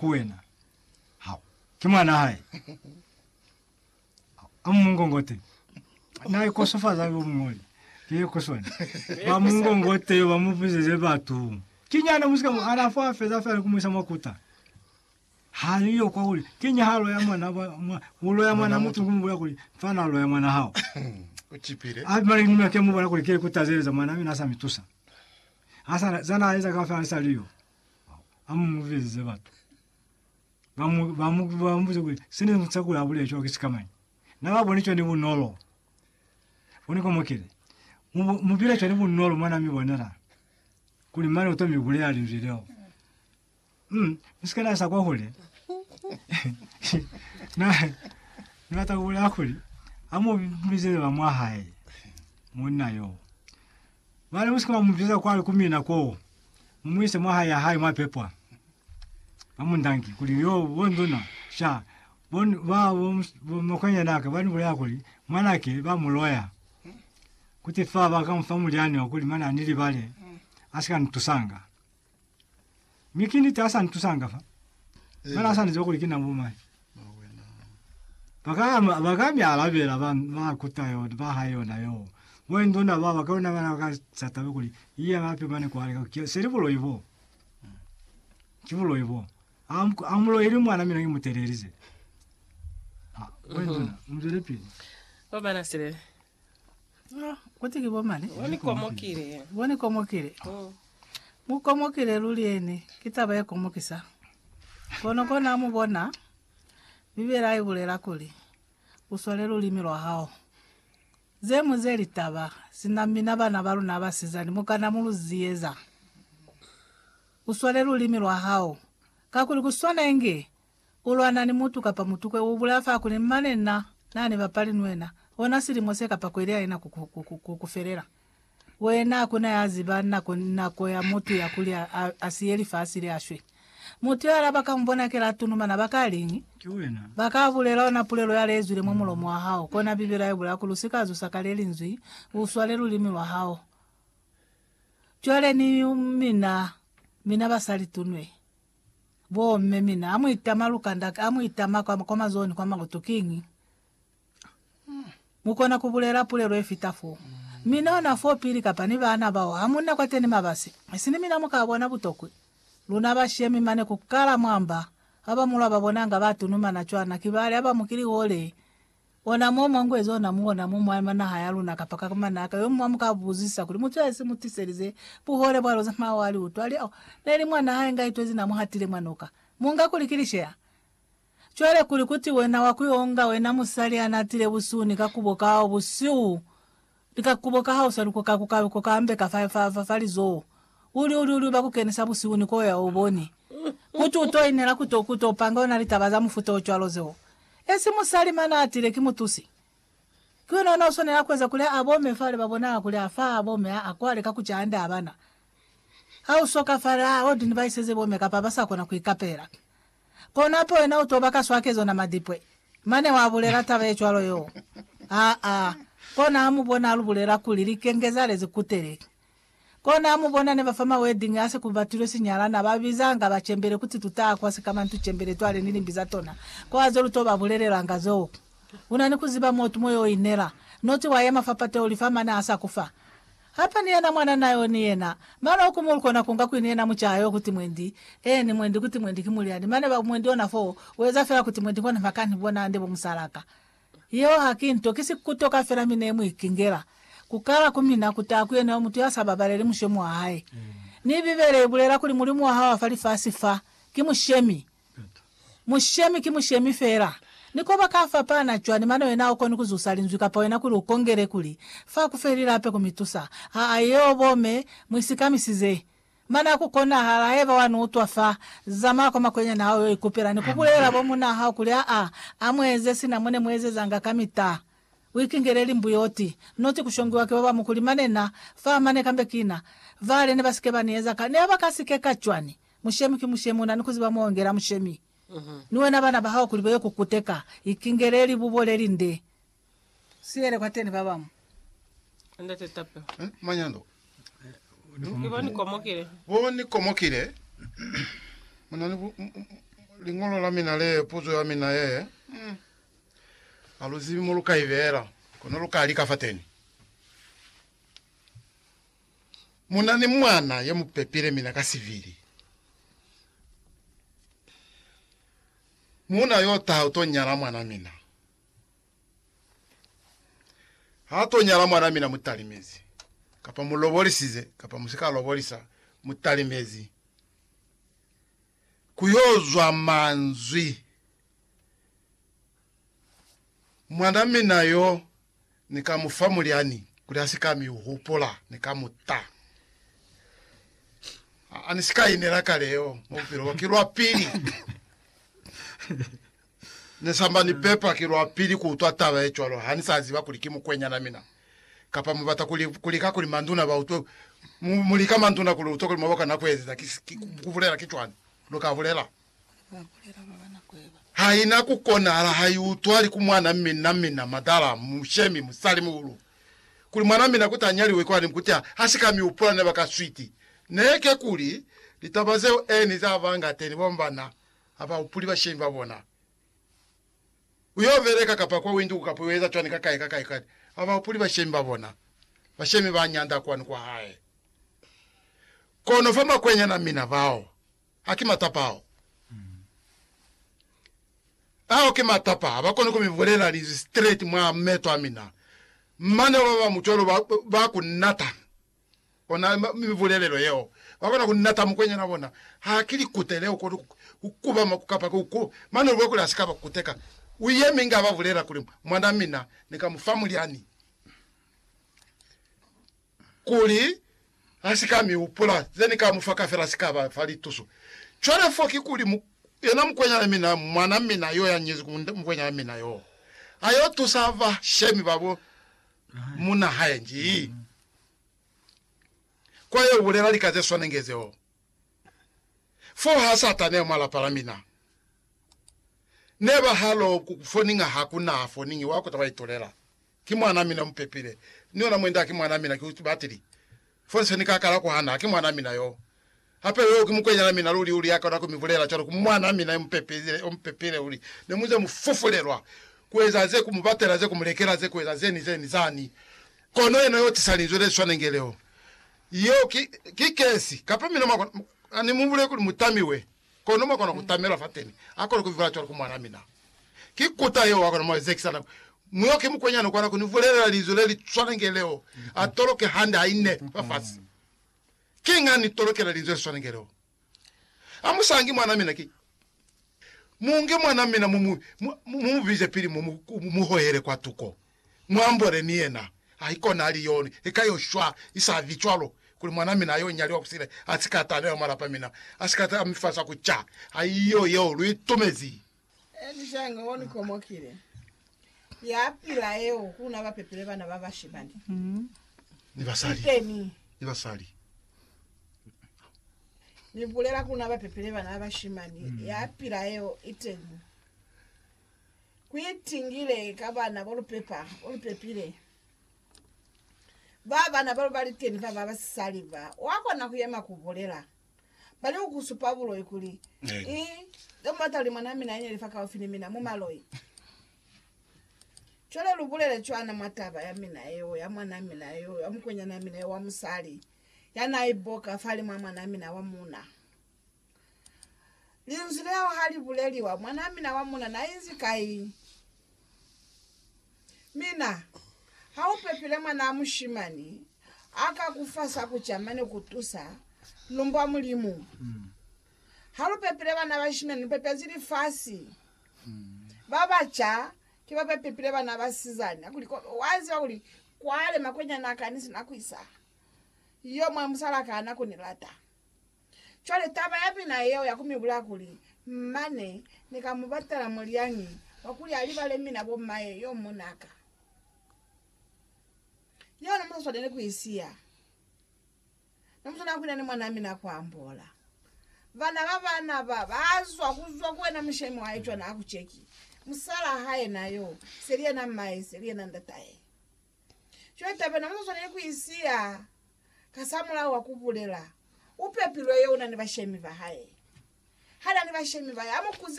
ku wena. Hao, ki mwana hae. Hao, a mungongote. Na ikosofaza yo mungoli. Ke ku swana. Ba mungongote, ba mubuzeze batu. Ki nyana musika mo, ana fa feza fela ku muisa makuta. Hali yo kwa uli, ki nya halo ya mwana, ba, mwa, ulo ya mwana mutu ku mubula kuli, fana lo ya mwana hao. Uchipile. Abi mali nime ke mubula kuli ke ku tazeleza mwana mina sa mitusa. Asa, zana aiza ka fela sa liyo. ha mu mu bizize batu ba mu ba mu ba mu kuli sine mu tsakula abule cho kisika mani na ba bone chone bunolo bone ko mokele mu mu bile chone bunolo mwana mi bonela kuli mani uto mi bule ali video mm misika na sa kwa hole na na ta kula kuli amu bizize ba mwa hae monna yo Mane musika bamubiza kwale ku mina koo, mumuise mwahae yahae mwapepwa. Bamundangi kuli, Yoo, bonduna, sha, bon, ba, bo, bo makwanyanaka banibulela kuli mwanake bamuloya. Kuti fa bakamufa mulyani wakuli mane anilibale, asika nitusanga. Mi ki niti asa ntusanga fa. Mara asa niziba kuli kina bo mai. Baka baka mi alabela ba ba kuta yo ba ha yona yo. Bo ndona ba baka ona bana baka sata be kuli iya bape mane kwa le ka seli bulo ibo. Ki bulo ibo. Am amulo ili mwana mina imutelelize. Mzwele pili. Obana sile No, kuti ki bo mane? Bo ni komokile. Bo ni komokile. Mm. Mu komokile luli ene. Ki taba ye komokisa. Kono kona mu bona, Bibela i bulela kuli, U swale lulimi lwa hao. Ze mu ze litaba, sina mina bana ba luna basizani mu kana mu lu ziyeza. U swale lulimi lwa hao. Kakuli ku swana inge Ku lwana ni mutu kapa mutukwe u bulaya fa kuli, Mane na na ni bapali ni wena, ona silimo se kapa kweli ya ina ku ku felela. Wena ha ku na ya ziba nako ni nako ya mutu ya kuli a siye lifasi le a shwe. Mutu yala ba ka mu bona kela a tunumana, ba ka liñi? Ba ka bulela ona pulelo ya le zwile mwa mulomo wa hao. Kona Bibela ye bulaya kuli, U si ka zusa ka le linzwi, u swale lulimi lwa hao. Cwale ni mina, mina basali tunwe. Bo mme mina amu itama lukanda amu itama kwa kwa mazoni kwa makutu kiñi? Mukona kubulela pulelo yefita fo. Mina ona fo pili kapa ni baana bao hamunna kwate ni mabasi. Isini mina muka bona butokwi. Luna bashemi mane kukala mwamba, baba mulwa babonanga ba tunumana cwana kibali haba mukili hole. Ona mo mwa ngwezi ona mu ona mo mwa naha ya luna kapa ka manaka, yo mwa mu ka buzisa kuli, Mutu ya si mu tiselize buhole bwa loze mwa wa li utwa? Li, Oh, ne li mwa naha ye nga itwezi, na mu hatile mwa noka. Mu nga kuli ki lisheya? Cwale kuli kuti wena wa ku yo nga wena musali ya natile busuni ka kubo kao busihu, Lika kubo ka hao sa luko ka ku ka luko ka ambe ka fa fa fa fa lizoho. U li u li u li u ba ku kenisa busihu ni ko ya u boni. Kuti u to inela ku to ku to panga ona litaba za mufuta o cwalo zeo. Esi musali mane a atile ki mutusi. Ki wena ona u swanela ku eza kuli a bome fale ba bonanga kuli a fa a bome a a kwale ka ku ca hande abana. Ha u soka fale a old ni ba iseze bome kapa ba sa kona ku ikapela. Kono hape wena u toba kaswa ke zona madipwe. Mane wa bulela taba ye cwalo yo. Aa. Kona ha mu bona lu bulela kuli, Likenge za lezi kutele. Kona ha mu bona ne ba fa ma wedding a se ku batilwe sinyala, na ba bizanga ba cembele kuti tu taha kwa sikamantu cembele twale ni limbi za tona. Ko haze lu to ba bulelelanga zoo. Una ni ku ziba motu mo yo inela. Noti wa yema fa pateo li fa mane ha sa ku fa. Hapa ni yena mwana na yo ni yena. Mane oku mu kona kunga kwini yena mucaa yo kuti mwendi, eeni, mwendi kuti mwendi ki mulyani, mane ba mwendi ona foo, weza fela kuti mwendi kona makani bona nde bo musalaka. Yeo ha ki nto, ki si kutoka fela mi ne mu ikingela. Ku kala ku mina ku taha ku yena yo mutu ya sa babaleli mushomi wa hae. Mi Bibele i bulela kuli Mulimu wa hao wa fa lifasi fa, ki mushemi. Mushemi ki mushemi feela. Ni koba ka fapana cwani mane wena ha ukoni ku zusa linzwi kapa wena kuli u kongele kuli, Fa ku fe lilape ku mi tusa. Aa, yeo bo me mu isikamisize. Mane ha ku konahala, haiba wa ni utwa fa, zamaya kwa makwenyani hao yo ikupela ni ku bulelela bo munaa hao kuli, Aa, a mu eze sina mo ne mu ezezanga kamita. U ikingele limbuyoti. Noti ku shongiwa ki babamu kuli, Mane na fa mane kambe kina. Vale ne ba si ke ba ni eza ka. Ne ba ka si ke ka cwani? Mushemi ki mushemi, una ni kuziba muongela mushemi. Ni wena bana bahao kuli baye kukuteka, ikingele libubo lelinde, siyele kwateni babamu. Ndate Tapelo. Eh, manyando. Ibo ni komokile. Bo ni komokile. Muna ni bu, m- m- lingolo la mina le, puzo ya mina ye. Mm. Aluzibi mo lu ka ibela. Kono lu ka lika fateni. Mu na ni mwana ye mu pepile mina ka sivili. Muuna yo taha u to nyala mwana mina. Ha to nyala mwana mina mu talimezi, kapa mu lobolisize kapa mu si ka lobolisa, mu talimezi. Ku yo zwa manzwi, Mwana mina yo Ni ka mu fa mulyani kuli a si ka mi hupula. Ni ka mu ta. Ha, ha ni si ka inela kaleo mwa bupilo bwa. Ki lwa pili ne samba ni pepa, ki lwa pili ku utwa taba ye cwalo. Ha ni sa ziba kuli ki mukwenyana mina. Kapa mu bata kuli, ku lika kuli manduna ba utwe, mu, mu lika manduna kuli utwe kuli mwa ba kona ku ezeza. Ki, ki, ku bulela ki cwani lu ka bulela. Haina ku konahala ha i utwali ku mwana mina mina madala mu shemi musali muhulu kuli mwana mina kuti a nyaliwe kwani nkuti ha ha si ka mi upula ne ba ka switi ne ke kuli litaba zeo eni za ba nga teni ba bana ha ba upuli bashemi ba bona ku yo beleka kapa kwa winduku kapa u eza cwani ka kai ka kai kwani ha ba upuli bashemi ba bona bashemi ba nyanda kwani kwa hae kono fa makwenyana mina bao A ki matapa ao. Ao ki matapa ha ba koni ku mi bulela linzwi straight mwa meto a mina. Mane ba ba mucwalo ba, ba ku nata ona mibulelelo yeo. Ba kona ku nata mukwenyana bona. Ha ki likute leo koni ku, ku kubama ku kapa ku, ku, mane u bwa kuli ha si ka ba kuteka. U yemi inge a ba bulela kuli, Mwana mina, ni ka mu fa mulyani. kuli a si ka mi hupula, ze ni ka mu fa kafela si ka ba fa lituso. Cwale fo ki kuli mu, yena mukwenyana mina, mwana mina yo ya nyezi ku mukwenyana mina yo, a yo tusa ba shemi ba bo munna hae nji kwa yo bulela lika ze swanenge zeo. Fo ha Satane mwa lapa la mina. Ne ba ha lo ku foninga ha ku na foningi wa ku ta ba itulela. Ki mwanaa mina mupepile, ni ona mwend'a ki mwanaa mina ki batili. Fo se ni ka kala kuhana, haki mwanaa mina yoo. Hape yoo ki mukwenyana mina luli uli ya kona ku mi bulela cwalo ku mwanaa mina yo mu pepile kuli, Ne mu ze mu fufulelwa ku eza ze, ku mu batela ze, ku mu lekela ze, ku eza ze ni ze ni zani. Kono yena yo tisa linzwi le swanenge leo, yeo ki, ki kesi. Kapa mina mwa kona, ha ni mu bulele kuli mu tamiwe. Kono mwa kona ku tamela fateni a kona ku mi bula cwalo ku mwan'a mina. Ki kuta yeo a kona mwa zekisa nako. Muyo ki mukwenyana ukona ku ni bulelela linzwi le li swana nge leo, a toloke hande ha ine fafasi. Kiñi a ni tolokela linzwi le swana nge leo? A mu sangi mwan'a mina ki. Mu nge mwan'a mina mu mu bize pili mo mu hohele kwatuko. Muambole ni yena. Haikona ali yo ni lika yo shwa, isavi cwalo, kuli mwan'a mina yo nyaliwa kusile asika atana yo malapa mina, asika ta mi fasa ku ca. Haiyo yeo lu itumezi. Elishaga o ni komokile, ya pila yeo, ku na ba pepile bana ba bashimani ni basali, iteni, ni basali. Ni bulela ku na ba pepile bana ba bashimani, ya pila yeo, iteni. Ku itingile ka bana bo lu pepa, bo lu pepile. Ba bana ba lu ba liteni fa ba basisali ba, wa kona ku yema ku bulela. Ba li ku ku supa buloi kuli, Eh. I, ze mu bata kuli mwanaa mina anyeli fakaufi ni mina, mu maloi. Cwale lu bulele cwana mwa taba ya mina yeo, ya mwanaa mina yo, ya mukwenyanaa mina yo wa musali, ya naa iboka fa limwaa mwanaa mina wa muuna. Linzwi leo ha li buleliwa, mwanaa mina wa muna na inzi kai? Mina, Ha u pepile mwanaa mushimani, a ka ku fa sa ku ca mane ku tusa, lumbwa Mulimu. Ha lu pepile bana bashimani, lu pepezi lifasi. Ba ba ca ki ba ba pepile bana basizani. A kuli, Kobe, wa ziba kuli kwale makwenyani a ka ni si na ku isa yo mwa musal'a ka na ku ni lata. Cwale taba ya mina yeo ya ku mi bulaya kuli, mane Ni ka mu batela mulyañi wa kuli a libale mina bo maye yo muna ka. Yeo ne mu sa swaneli ku i siya. Ne mu swanela ku ina ni mwanaa mina kwa ambola. Bana ba bana ba ba zwa ku zwa ku wena mushemi wa hae cwana ha ku ceki, musalaa hae na yo, seli yena mmae, seli yena ndatae. Cwale taba yeo ne mu sa swaneli ku i siya. Kasamulaho wa ku bulela, u pepilwe yo una ni bashemi ba hae. Ha na ni bashemi ba hae, a mu kuze.